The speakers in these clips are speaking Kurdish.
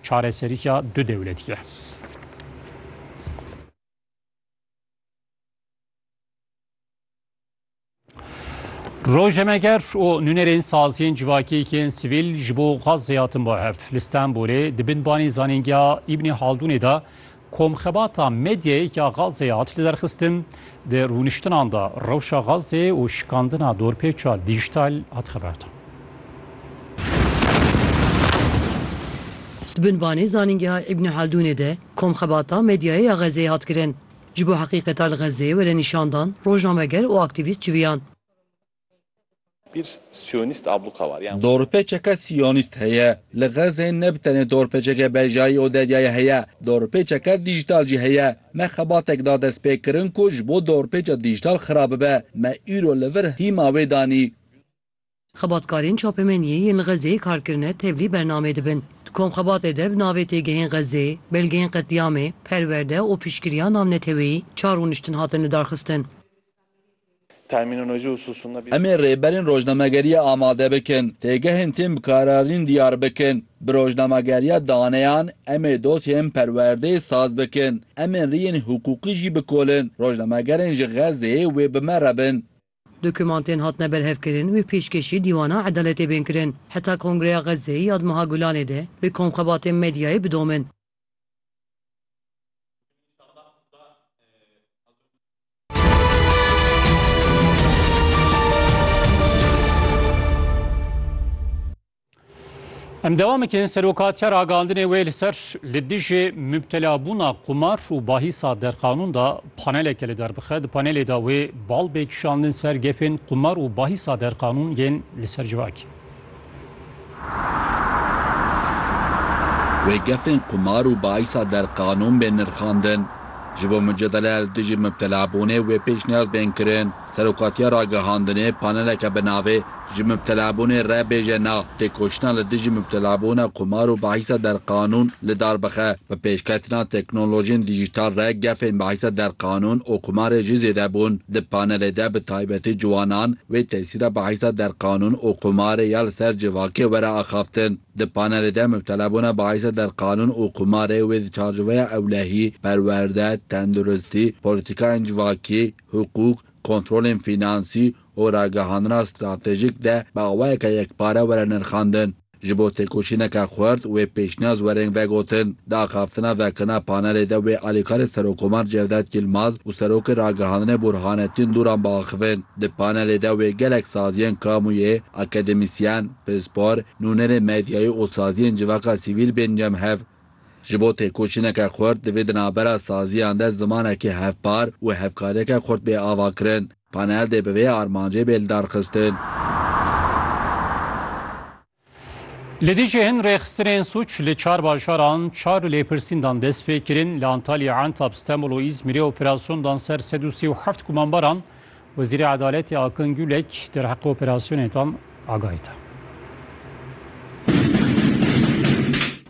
Çareseriya du dewletî ye. Rojnameger û nûnerên saziyên civakî yên sivîl ji bo Xazzeyê hatin bo hev. Li Stenbolê di bin banê zanîngeha Îbnî Haldûnê de Komxebata medyayê ya Gazeyê hat lidarxistin, di rûniştinan de rewşa Gazeyê û şikandina dorpêça dîjital hat xeberdan. Di binvanê Zanîngeha Îbnî Haldûnê de Komxebata medyayê ya Gazeyê hat kirin. Ji bo heqîqeta li Gazeyê were nîşandan rojnameger û aktîvîst civiyan. Bir siyonîst abluka war yan. Dorpêçeke siyonîst heye. Li Xezê ne bi tenê dorpêçeke bejayî û deryayê heye, dorpêçeke dîjîtal jî heye. Me xebatek da destpêkirin ku ji bo dorpêça dîjîtal xira bibe. Me îro li vir hîma wê danî. Xebatkarên çapemeniyê yên li Xezê kar kirine tevlî bernamê dibin. Di komxebatê de bi navê Têgehên Xezê, Belgeyên Qetlîamê, Perwerde û Piştgiriya Navneteweyî çar rûniştin hatin lidarxistin. Em ê rêberên rojnamegeriyê amade bikin, têgehên tên bi kararîn diyar bikin. Bi rojnamegeriya daneyan em ê dosyeyên perwerdeyê saz bikin. Em ên riyên hiqûqî jî bikolin, rojnamegerên ji Xezzeyê wê bi me re bin. Dokûmantên hatine berhevkirin wê pêşkêşî dîwana edaletê bên kirin. Heta Kongreya Xezzeyê ya di meha Gulanê de wê komxebatên medyayê bidomin. Em devam ekin serokatiya ragihandinê wê li ser li dijî mubtelabûna qumar û bahîsa derqanûn da paneleke li derbixe. Di panelê da wê bal bê kişandin ser gefên qumar û bahîsa derqanûn yên li ser civakî. Wê gefên qumar û baisa der qanûn bên nirxandin. Ji bo mucadele li dijî mibtelabûnê wê pêşniyaz bên kirin. Serokatiya Ragihandinê paneleke bi navê Ji mibtelabûnê re bêje na, têkoşîna li dijî mibtelabûna qumar û baisa der qanûn li dar bixe. Bi pêşketina teknolojiyên dijîtal re gefên baisa der qanûn û qumarê jî zêde bûn. Di panelê de bi taybetî ciwanan, Wê tesîra bahîsa derqanûn û qumarê ya li ser civakê were axaftin. Di panelê de mubtelebûna bahîsa derqanûn û qumarê wê di çarçoveya ewlehî, perwerde, tenduristî, polîtîkayên civakî, hiqûq, kontrolên fînansî û ragihandina stratejîk de bi awayeke yekpare were nirxandin. Ji bo têkoşîneke xurt wê pêşniyaz wereng vegotin. Di axaftina vekirina panelê de wê alîkarê Serokkomar Cevdet Yilmaz û Serokê Ragihandinê Burhanettin Duran biaxivin. Di panelê de wê gelek saziyên kamûyê, akademîsyen, pispor, nûnerê medyayî û saziyên civaka sivîl bên cem hev. Ji bo têkoşîneke xurt divê di navbera saziyan de zimanekî hevpar û hevkariyeke xurt bê avakirin. Panel dê bi vê armancê bê lidarxistin. Li Dîcê hin rêxistinên sûc li çar bajaran çar lêpirsîndan dest pê kirin. Li Antalya, Entab, Stenbol û Îzmîrê operasyon dan ser sed û sê û heft gumanbaran. Wezîrê Edaletê Akın Gülek derheqê operasyonê dan. agahî da.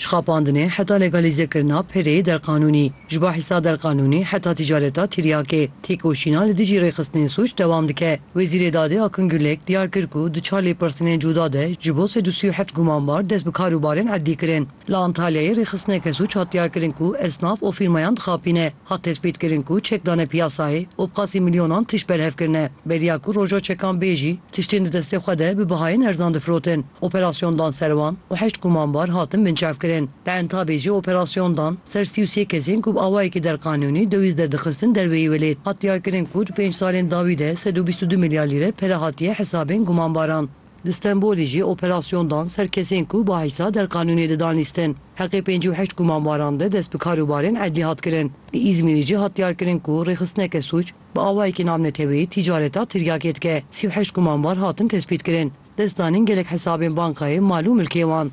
Şxapandinê heta legalîzekirina pereyê derqanûnî, ji bo hîsa derqanûnî heta tîcareta tîryakê, têkoşîna li dijî rêxistinên sûc dewam dike. Wezîrê Dadê Akın Gürlek diyar kir ku di çar lêpirsînên cuda de ji bo sed û sî û heft gumanbar dest bi karûbarên erdî kirin. Li Antalyayê rêxistineke sûc hat diyarkirin ku esnaf û fîrmayan dixapîne. Hat tespîtkirin ku çek dane piyasayê û bi qasî milyonan tişt berhev kirine. Beriya ku roja çekan bê jî, tiştên di destê xwe de bi bihayên erzan difirotin. Operasyon dan ser wan û heşt gumanbar hatin binçavkirin. Li Entabê jî operasyon dan ser sî û sê kesên ku bi awayekî derqanûnî dewîz derdixistin derveyî welêt. Hat diyarkirin ku di pênc salên dawî de sed û bîst û du milyar lîre pere hatiye hesabên gumanbaran. Li Stenbolê jî operasyon dan ser kesên ku bi heysa derqanûnê didan lîstin. Heqê pêncî û heşt gumanbaran de dest bi kar û barên edlî hat kirin. Li Îzmîrê jî hat diyarkirin ku rêxistineke sûc bi awayekî navneteweyî tîcareta tiryakê dike. Sî û heşt gumanbar hatin tespîtkirin. Destdanîn gelek hesabên bankayê, mal û milkê wan.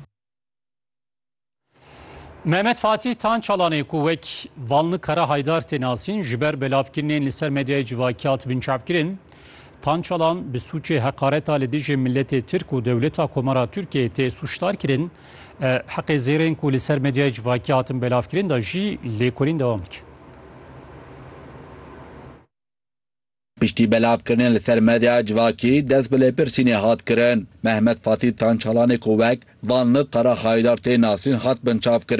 Mehmet Fatih Tan Çalanê ku wek Valni Kara Haydar tê nasîn ji ber belavkirinên li ser medyayê civakî hat binçavkirin. Tan Çalan bi sûçê heqareta li dijî miletê Tirk û dewleta Komara Tirkiyeyê tê sûçdar kirin. Heqê zêrên ku li ser medyayê civakî hatin belavkirin de jî lêkolîn dewam dike. Piştî belavkirinê li ser medyaya civakî dest bi lêpirsînê hat kirin. Mehmet Fatîl Tançalanê ku wek Vanli Qara Hayidar tê nasîn hat binçavkirin.